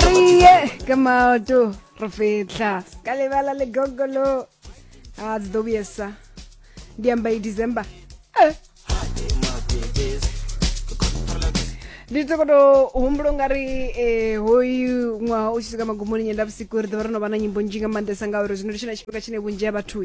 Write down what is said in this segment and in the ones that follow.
re ye ka maoto re fetla ka lebala le gogolo a dzi ḓo vhuyesa ndi amba i december Eh. ndi to koto humbula ungari eh, hoyu ṅwaha u tshi swika magumoni nyenda vhusiku ri ḓovha ro no vha na nyimbo nzhi nga maanḓesa ngauri zwino ndi tshone tshifhinga tshine vhunzhi ha vhathu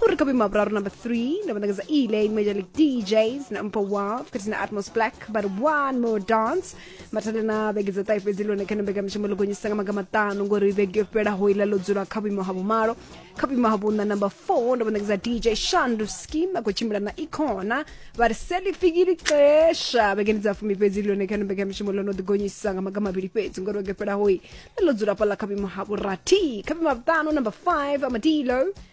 Go re ka boima boraro number three ne banaketsa e-lane major league djs na mpa wa fetsi na atmos black but one more dance mathale na vhege dza ṱahe fhedzi lone khana mbekanyamushumo ḽo gonyisa nga maga maṱanu ngori vhege yo fhelaho iḽa ḽo dzula kha vhuimo ha vhumalo kha vhuimo ha vhuṋa number four ndo vhanaketsa dj shandu skim a khou tshimbila na icona vha ri selifikili xesha vhegeni dza fumi fhedzi lone khana mbekanyamushumo ḽo no ḓi gonyisa nga maga mavhili fhedzi ngori vhege yo fhelaho i ḽo dzula fhaḽa kha vhuimo ha vhurathi kha vhuimo ha vhuṱanu number five amadilo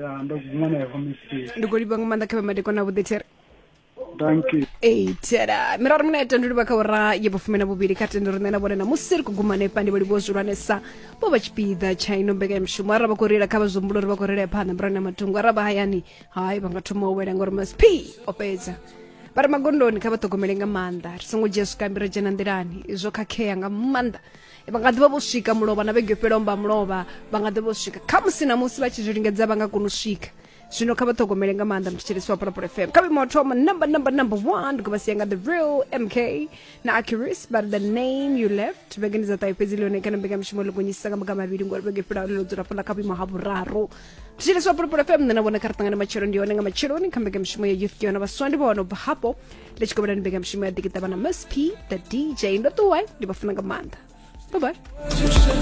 ya ndo guma nayo kha mistake ndi khou livha nga maanḓa kha vhemadekwana vhuḓi there thank you ei tera mirari muna ya tandulivha kha ura ya vhufumi na vhuvhili kha tendo riṋe na vhone na musi ri khou guma hanefha ndi vholivo zwihulwanesa vho vha tshipiḓa tsha ino mbekanyamushumo arali vha khou reila kha vha zwihumbulo uri vha khou reila phanḓa murani na matungo arali vha hayani hai vha nga thoma u wela ngauri masp o fhedza vha re magondoni kha vha ṱhogomele nga maanḓa ri songo dzhia zwikambi ra dzhena nḓilani zwo khakhea nga maanḓa vha nga ḓivha vho swika mulovha na vhege yo fhelelaho mba mulovha vha nga ḓivha vho swika kha musi na musi vha tshi zwi lingedza vha nga kona u swika zwino kha vha ṱhogomele nga maanḓa mthetshelesi wa phalaphala fm kha vhimo thoma number number number one ndi khou vha sia nga the real mk na acurus but the name you left vhege ndi dza ṱahe fhedzi ḽone kana mbekanyamushumo ḽo gonyisisa nga maga mavhili ngori vhege fhelelaho ḽo dzula fhala kha vhuimo ha vhuraru mthetshelesi wa phalaphala fm nṋe na vhona kha ri ṱangane matshelo ndi hone nga matsheloni kha mbekanyamushumo ya youth ke yona vhaswa ndi vha wana u bva hafho ndi tshi kovhelani mbekanyamushumo ya ḓikiṱavha na msp the dj ndo ṱuwa ndi vha funa nga maanḓa bye bye